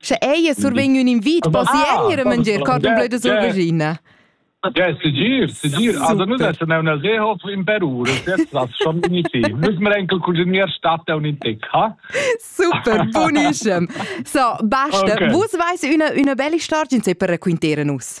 Sche ei survegn ün invit, possi ei ir a mangiar carton bleu da survegina. Ja, segir, segir. Also nu das ne una sehof in Peru, das ist das schon signific. Nus mer enkel cuisinier statt un in tec, ha? Super, buonissem. So, basta, okay. vus veis üna, üna bella storia per racquintare nus.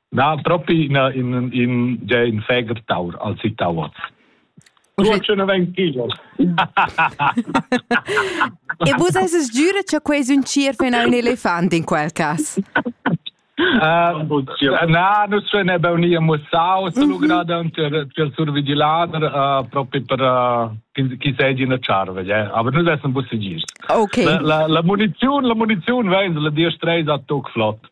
Na, propi in, in, in, già in feger taur al sittauoz. Uschè vegn kilos. e vus eis giura che quei un cer fin un elefant in quel cas? Na, nus ne bauni mussau se lu grada per survigilader proprio per chi seigi in charve, aber nus essen busse gir. Okay. La la muniziun, la muniziun veis la dir strei a toc flott.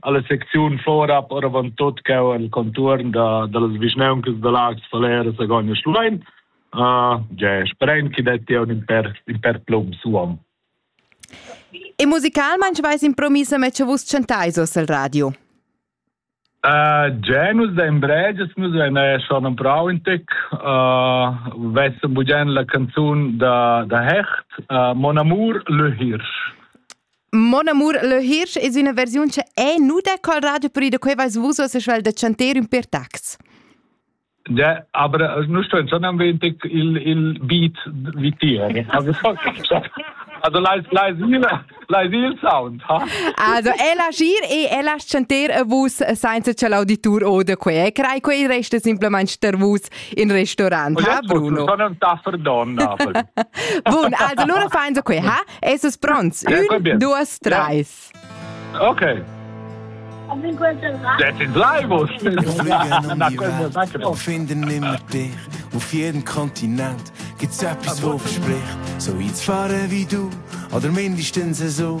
alla secziun fora oravant tot che el contuorn da dallas vischnauncas da Laax, Falera, Sagogna e Schluein. Uh, ge speren che detti un per in per plum suom. E musicalmente vais impromissa me che vus chantais os al radio. Uh, Già nus da in breges nus vein schon ein brau in tec. Uh, vessen bugen la canzun da da Hecht, uh, Mon amour le Hirsch. Mon amur, le Hirsch es üna versiun che è nuda col radio per ida quei vais vus se schwel de chanter un per tax. Ja, aber nu sto sondern wendig il il beat wie tier. Also Also leis leis il leis il sound, ha? Also è la gir e è la chanter a vus senza che l'auditur ode quei. Crai quei resta simplemente per vus in restaurant, ha Bruno? Sono un taffer donna. Bun, allora fai so quei, ha? Esses pronts? Un, due, tre. Ok. Das ist Leibus. Finden immer dich auf jedem Kontinent gibt's etwas, wo verspricht. So weit fahren wie du, oder mindestens so,